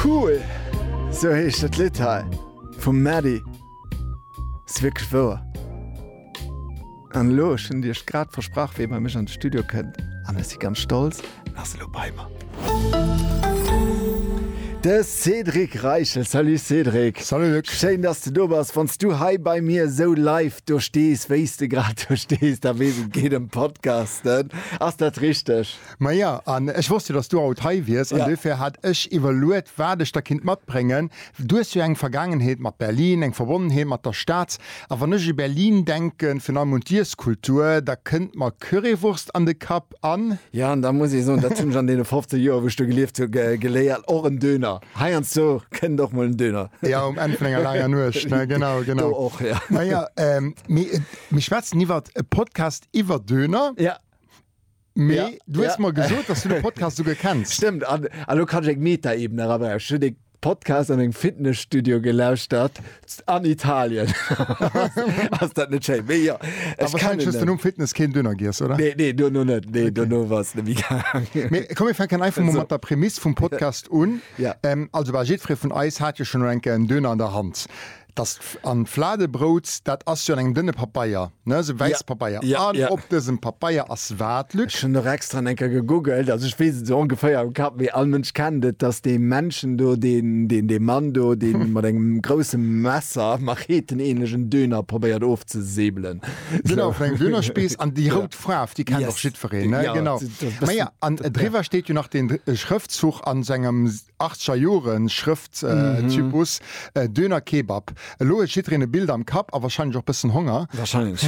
Cool! Sou heescht dat Lidd hei vum Mady. Ass wierklech wouer. An elo, ech hunn iech grad versprach, wéi bei mech an de Studio kënnt, an ech si ganz stolz, en ass elo bei mer, de Cédric Reichel. Salut Cédric! Salut Luc! Schéin, dass de do bass. Wann s du hei bei mir esou live do stees, wéi s de grad do stees, da weess ech, et geet ëm Podcasten. Ass dat richteg? Maja, an ech wosst jo, dass du haut hei wiers, an duerfir hat ech iwwerluet, wat ech der kinnt matbréngen. Du hues jo eng Vergaangenheet mat Berlin, eng Verbonnenheet mat der Stad. A wann ech u Berlin denken, virun allem un d'Iesskultur, da kënnt mer Currywurst an de Kapp an. Jo, an da muss ee soen, dat hunn ech an deene 15 Joer, wou ech do gelieft hu, geléiert, och en Döner. Heiansdo kënnt och mol en Döner. Jo, um Enn vun enger laanger Nuecht, ne? Genau, genau. Do och, jo. Maja, mir schwätzen iwwert e Podcast iwwer Döner. Jo. Mee ja, du hues ja. mer gesot, dass du den Podcast souguer kenns. Stimmt, an, an lo kann ich eng Meta-Ebene erabrechen. Ich den Podcast an engem Fitnessstudio gelauschtert an Italien. Ass dat net schéin? Mee ja, ich Aber kann wahrscheinlich den um Fitness kein Döner giess, oder? Nee, nee, du no net. Nee, okay. du no was de Migang. Mee komm, wir fänken einfach mal so. mat der Prämisse vum Podcast un. Ja. Ähm, also, war jedfree vun eis hat jo schon enke en Döner an der Hand. Dass an d'Fladebrout, dat ass jo an engem dënne Papeier, ne, sou wäisse Papeier. An op dësem Papeier ass wat, Luc? Ech hunn och extra eng Kéier gegoogelt, also ech weess et esou ongeféier am Kapp, mee all Mënsch kennt et, dass dee Männchen do, deen, dee Mann do, dee mat engem grouse Messer, Machetenähnlechen, Döner probéiert ofzesäbelen. Genau, vun engem Dönerspieß. An déi rout Faarf, déi kennt och jiddwereen, ne? Genau. Maja, an driwwer steet jo nach deen Schrëftzug an sengem Achtscher Joren Schrëfttypus, Döner Kebab. Elo huet jiddreen e Bild am Kapp a wahrscheinlech och bëssen Honger. Wahrscheinlech.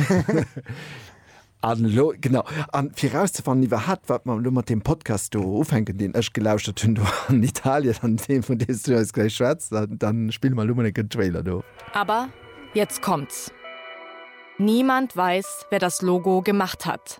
An elo, genau, a fir erauszefannen iwwerhaapt wat mer elo mat deem Podcast do ufänken, deen ech gelauschert hunn do an Italien an deem vun deem s du eis gläich schwätz, da spille mer elo mol en gëtt Trailer do. Aber jetzt kommt's, Niemand weiß, wer das Logo gemacht hat.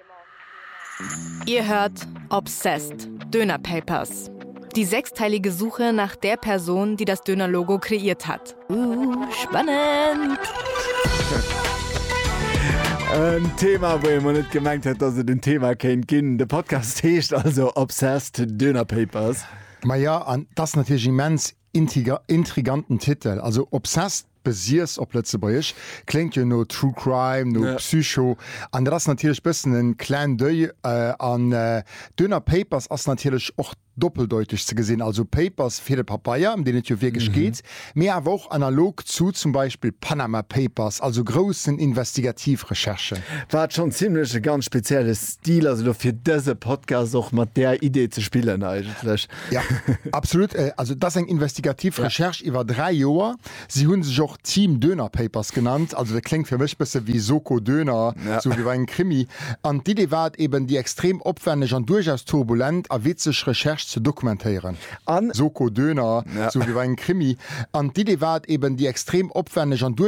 Dir hört Obsessed, Döner Papers. Die sechsteilige Suche nach der Person, die das Döner Logo kreiert hat. Ooh, spannend! En Thema, wou ee mol net gemengt hätt, dass et en Thema kéint ginn. De Podcast heescht also Obsessed, Döner Papers. Maja, an 't ass natierlech immens. Intriganten Titel, also Obsessed, besiess op Lëtzebuergesch, kléngt jo no True Crime, no Psycho, an dat ass natierlech bëssen en Clin d'oeil. An duerno Papers ass natierlech och doppeldeuteg ze gesinn, also Papers fir de Papeier, ëm deen et jo wierklech geet, mee awer och analog zu zum Beispill Panama Papers, also groussen Investigativ-Recherchen. Wat schonn zimlech e ganz spezielle Stil ass elo fir dëse Podcast och mat där Idee ze spillen eigentlech. Ja, absolut. Also dat ass eng investigativ Recherche ja. iwwer dräi Joer. Si hunn sech och Team Döner Papers genannt. Also dat kléngt fir mech bësse wéi Soko Döner, ja. sou wéi bei engem Krimi. An d'Idee war et eben, déi extrem opwänneg an duerchaus turbulent a witzeg Recherche ze dokumentéieren. An Soko Döner, ja. sou wéi bei engem Krimi. An d'Idee war et eben, déi extrem opwänneg an duerchaus